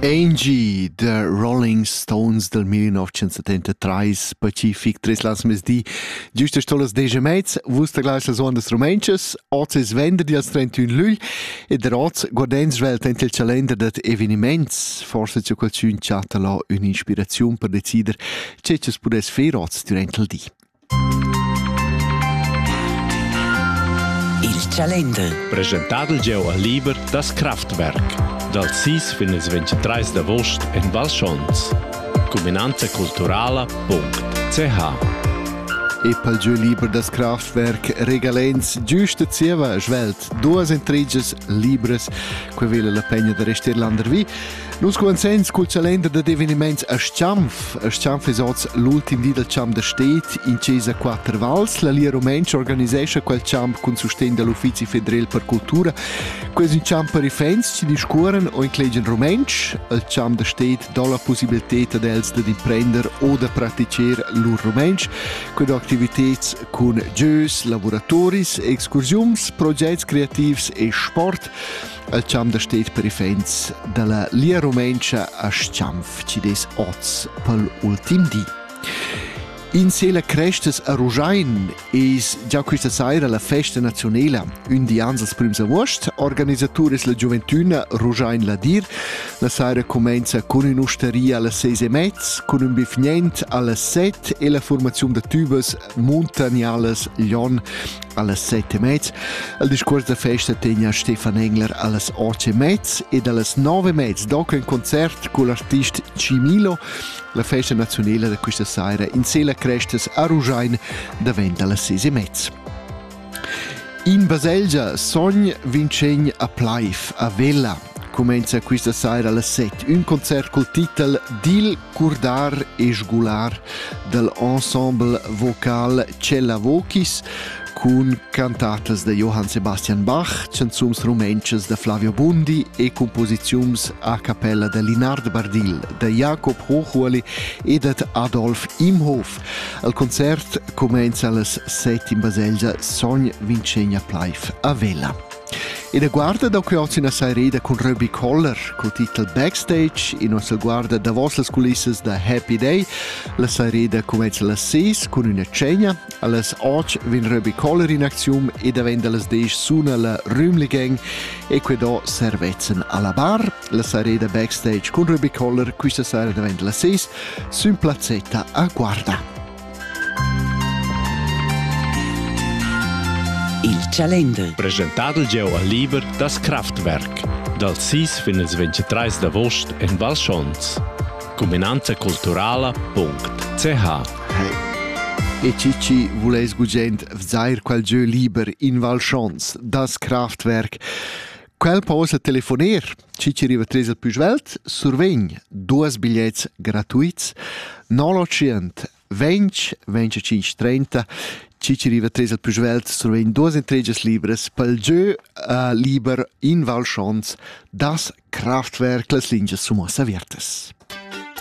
Angie, The Rolling Stones del 1973, Pacific, tres las mesdi, giusta stolas deja mezz, vus taglas las ondas romanchas, oz es venderdi als 31 lügl, ed der oz guardens svelt ent il calender dat eveniments, forse c'è qualcun chatta là un'inspiraziun per decider, ce che pudess fer oz durant il di. Il calender. Presentadel gieu al liber das Kraftwerk dal 6 fin il 23 d'avost en Val Schons. Cuminanza culturala.ch E pel gieu liber das Kraftwerk regalens giusta zieva svelt duas entriges libres, que vela la pegna da rester landervi. Nus cumanzens cul calender dad eveniments a Schianf. A Schianf es hoz l'ultim di dal champ da sted in Chesa Quatter Vals. La Lia Rumentscha organisescha quel champ cun sustegn da l'Uffizi federel per cultura. Quel es ün champ per ifens chi discuoran o inclegian rumentsch. Il champ da sted do la pussibiltà ad els dad imprender o da praticher lur rumentsch. Quelle activiteds cun jeux, lavuratoris, excursiuns, progetti creativs e sport. El champ da sted per iffaints da la Lia Rumentscha a Schanf ci des oz pel ultim di. In sela crestas a Ruschein es già questa saira la festa nazionela. Un di ans als prims august organisaturis la gioventüna Ruschein Ladir. La saira comenza cun ün'usteria alla ses e mezz, cun ün bifgnent alla set e la formaziun da tübas Muntanialas Lyon allas set e mez. Il discurs da festa tegna Stefan Engler allas otg e mez ed allas nove e mez dopo in concert con l'artist Cimilo la festa nazionale da questa sera in Sela Crestas a Rugiain davent allas ses e mez. In baselgia sogn Vincent a Pleif a Vella cumenza questa saira alle 7 un concert col titel Dil curdar e sgular dell'ensemble vocal Cella Vocis cun cantatas da Johann Sebastian Bach, canzons rumentschas da Flavio Bundi e composizions a cappella da Linard Bardill, da Jakob Hochuoli e da Adolf Imhof. Al concert cumainza las set in baselgia Sogn Vincegna Pleif a Vella. Ina guarda da quots ina saireda cun Ruby Collar col titel Backstage, ina sa guarda davos las culissas da Happy Day. La saireda cumainza las ses cun üna cegna. Allas 8 vin Ruby Collar in aczium e davent da las 10 suna la Rümli Gang e que do servezzan alla bar La sareda backstage cun Ruby Koller questa sera davent la 6 sün plazzetta a Guarda. Il Chalender. Presentado gieu al liber das Kraftwerk dal 6 fin il 23 d'avost en Val Schons. Cuminanza culturala.ch E Cici vulais gugent vzar quel gieu liber in Val Schons, das Kraftwerk. Quel posa telefoner, chi ci riva tres il pü svelt, survegn duos bigliets gratuits, 900 20 25 30 chi ci riva tres il pü svelt survegn duos entregias libras pel giö uh, liber in Val Schons das Kraftwerk las lingias sumos avertas.